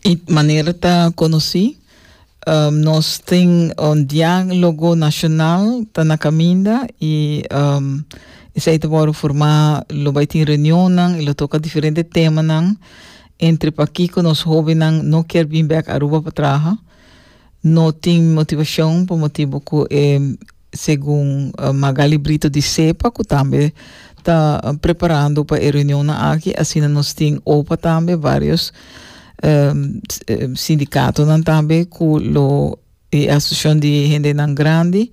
E manera ta konosí, nos tin un diálogo nashonal ta na kaminda i esei ta wòrdu formá, lo bai tin reunionnan i lo toka diferente temanan entre pakiko nos hóbennan no kier bin bèk Aruba pa traha, no tin motivashon pa motibu ku e segun Magaly Brito di Cepa cu tambe ta preparando pa e reunionnan aki, asina nos tin opa tambe varios sindicatonan tambe cu lo e Asociacion di Hendenan Grandi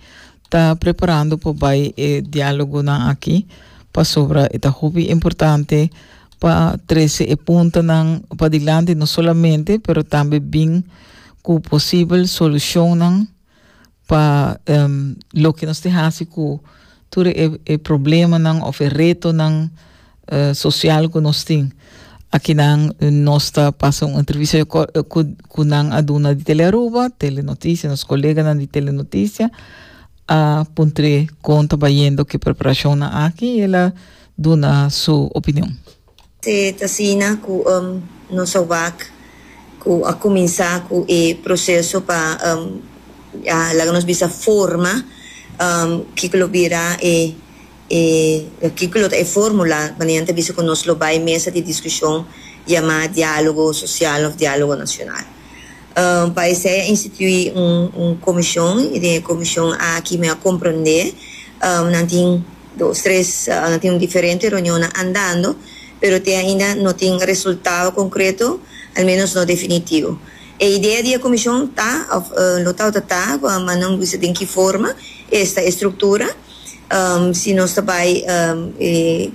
ta preparando pa bay e dialogonan aki pasobra e ta hopi importante pa trece e puntonan padilanti no solamente pero tambe bin cu posibel solucionnan. pa loke nos te hasi ku tur e problemanan òf e retonan sosial ku nos tin. Akinan nos ta pasa un entrevista ku nan a duna di Telearuba, Telenotisia, nos koleganan di Telenotisia a puntr'é kon ta bayendo ku e preparashonnan aki i el a duna su opinion. Se ta asina ku nos a wak ku a kuminsá ku e proseso pa laga nos bisa forma kiko lo bira e e kiko lo ta e fórmula manera nan ta bisa ku nos lo bai mesa di diskushon yamá diálogo sosial òf diálogo nashonal. Pa esei a instituí un komishon i den e komishon aki mi a komprondé nan tin. Dos tres a tin un diferente reunionnan andando, pero te ainda no tin resultado concreto, al menos no definitivo. E idea di e comision ta, of lo tawata ta, ma nan bisa den ki forma, esta e structura, si nos ta bay den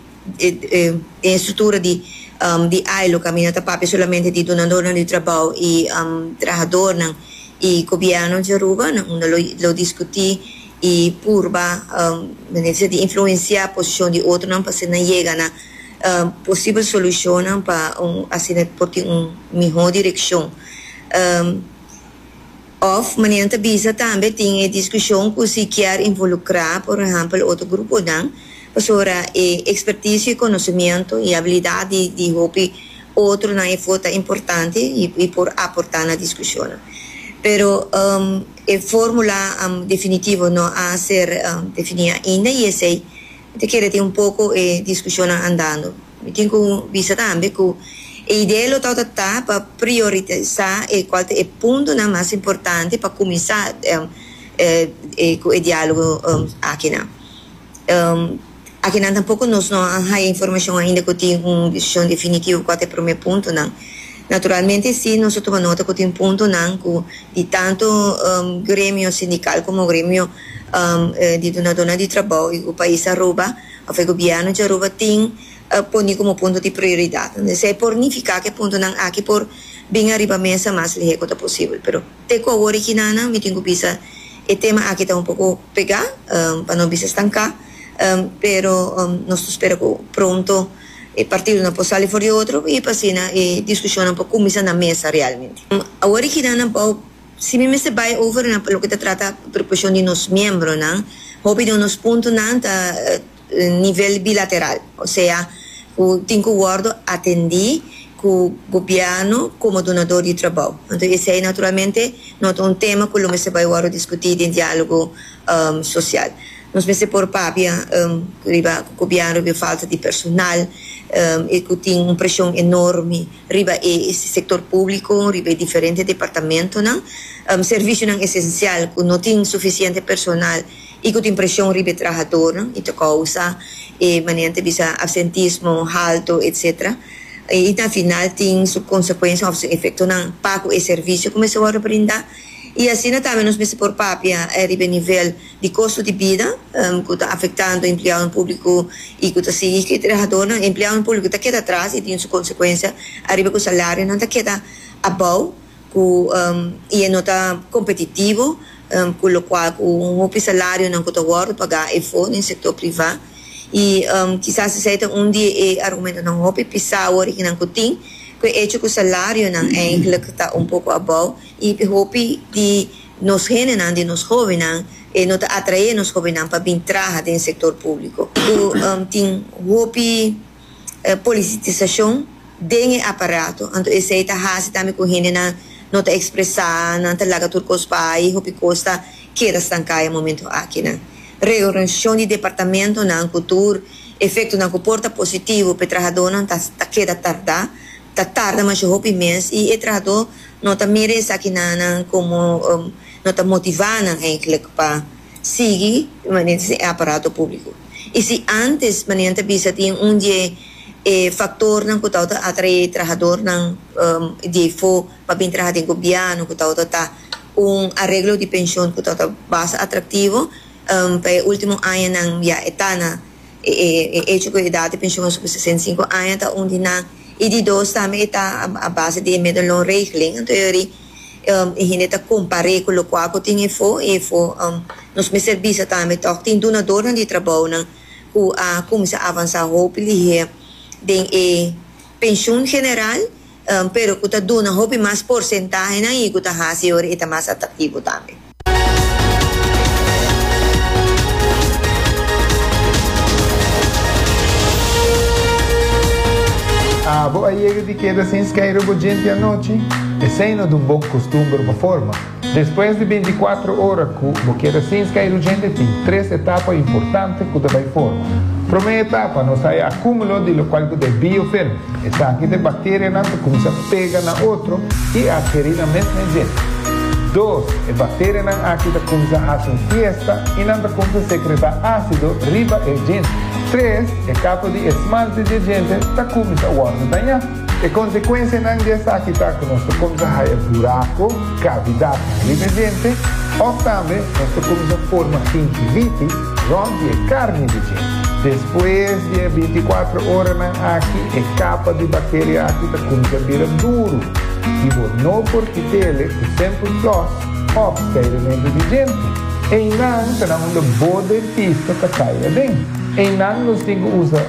e structura di di ILO, caminda ta papia solamente di dunadornan di trabao y trahadornan y gobierno di Aruba, nan unda lo discuti. y purba manera di influencia posicion di otronan pa hacer nan yega na posible solucionnan pa asina por tin un miho direccion of manera nan ta bisa tambe tin e discusion cu si kier involucra por ehempel otro gruponan pasobra e experticio y conocimiento y habilidad di hopi otronan efo ta importante y por aporta na discusionnan pero. E fórmula definitivo no a ser definí ainda i esei mi ta kere tin un poko e diskushonnan andando. Mi tin ku bisa tambe ku e idea lo ta ota ta pa prioritisá e kual ta e puntonan mas importante pa kuminsá ku e diálogo akinan. Akinan tampoco nos no a haya informacion ainda cu tin un decision definitivo cua ta e prome puntonan. Naturalmente si nos a tuma nota cu tin puntonan cu di tanto gremio sindical como gremio di dunadonan di trabao di e pais Aruba of e gobierno di Aruba tin poni como punto di prioridad. Esey por nifica cu e puntonan aki por bin ariba mesa mas lehe cu ta posibel pero. Te ku awor e kinanan mi tin ku bisa e tema aki ta un poko pegá, pa no bisa stanká, pero nos ta spera ku pronto e partidonan por sali for di otro i pa asina e diskushonnan por kuminsá na mesa realmente. Awor e kinanan por si mi mester bai over na loke ta trata preokupacion di nos miembronan, hopi di nos puntonan ta. nivel bilateral, osea ku tin ku wòrdu atendí ku gobièrnu komo dunadó di trabou. Anto esei naturalmente no ta un tema ku lo mester bai wòrdu diskutí den diálogo sosial. Nos mester por papia riba ku gobièrnu den falta di personal i ku tin un preshon enormi riba e sektor públiko, riba e diferente departamentonan, servisionan esensial ku no tin sufisiente personal. i ku tin preshon riba e trahadornan i ta kousa e manera ta bisa absentismo halto etc. I ta final tin su konsekuensia òf su efektonan pa ku e servisio kuminsá wòrdu brinda i asina tambe nos mester por papia riba e nivel di kosto di bida ku ta afektando empleadonan públiko i ku ta sigui ku e trahadornan e empleadonan públiko ta keda atras i tin su konsekuensia ariba ku salarionan ta keda abou. ku i e no ta kompetitivo ku lokual ku un hopi salarionan ku ta wòrdu pagá efo den sektor privá i kisas esei ta un di e argumentonan hopi pisá woriginan ku tin ku e echo ku salarionan eindelijk ta un poko abou i p'e hopi di nos hendenan di nos hóbennan e no ta atraé nos hóbennan pa bin traha den sektor públiko ku tin hopi. e polisitisashon den e aparato, anto esei ta hasi tambe ku hendenan no ta ekspresá, nan ta laga tur kos bai i hopi kos ta keda stanká e momentu akinan. Reorganisashon di departamentonan ku tur efektonan ku por ta positivo pa e trahadónan ta ta keda tardá, ta tarda masha hopi mes i e trahadó no ta mira esaki nan komo no ta motivá nan eintlik pa. sigui manera tin e aparato públiko. I si ántes manera ta bisa tin un di e faktornan ku ta ota atraé trahadónan di eifó pa bin traha den gobièrnu ku ta ota ta un areglo di penshon ku ta ota basta atraktivo pa e último añanan ya e ta na e echo ku e edat di penshon a subi sesenta i sinku aña ta un di nan i di dos tambe e ta a base di e medellon regeling anto e ri e hende ta kompar'é ku lokual ku tin efo i efo nos mester bisa tambe tòg tin dunadornan di trabounan ku a kuminsá avansá hopi lihé den e penshun general pero ku ta duna hopi mas porsentahenan i ku ta hasi ora e ta mas atraktivo tambe. A bo a yega di keda sin skeiru bo djenti anochi? Esei no dun bo kustumber pa forma. Despues di binticuatro ora ku bo keda sin skeiru djenti tin tres etapa importante ku ta bai forma. Promé etapa nos ta e akumulo di lokual ku ta e biofilm. Esaki ta e bacterianan ta cuminsa pega na otro y a heri nan mes mejel. Dos, e bacterianan aki ta cuminsa haci un fiesta y nan ta cuminsa secreta acido riba e djente. Tres, e capa di esmalte di e djente ta cuminsa worde daña. E consecuencianan di esaki ta cu nos ta cuminsa haya buraco, cavidadnan, riba e djente of tambe nos ta cuminsa forma gingivitis, Rònt di e karni di dje. Despues di e bintikuatro oranan aki, e kapa di bakteria aki ta kuminsá bira duru i bo no por kit'e ku sèmpel flòs òf skairementu di djenti. Einan ta na unda bo dentista ta kai aden. Einan nos tin ku usa.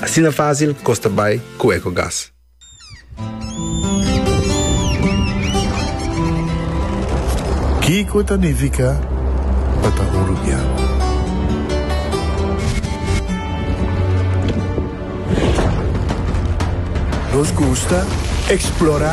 Asina fásil kos ta bai ku Ecogas. Kiko ta nifiká pa ta uruguiano? Nos gusta eksplorá.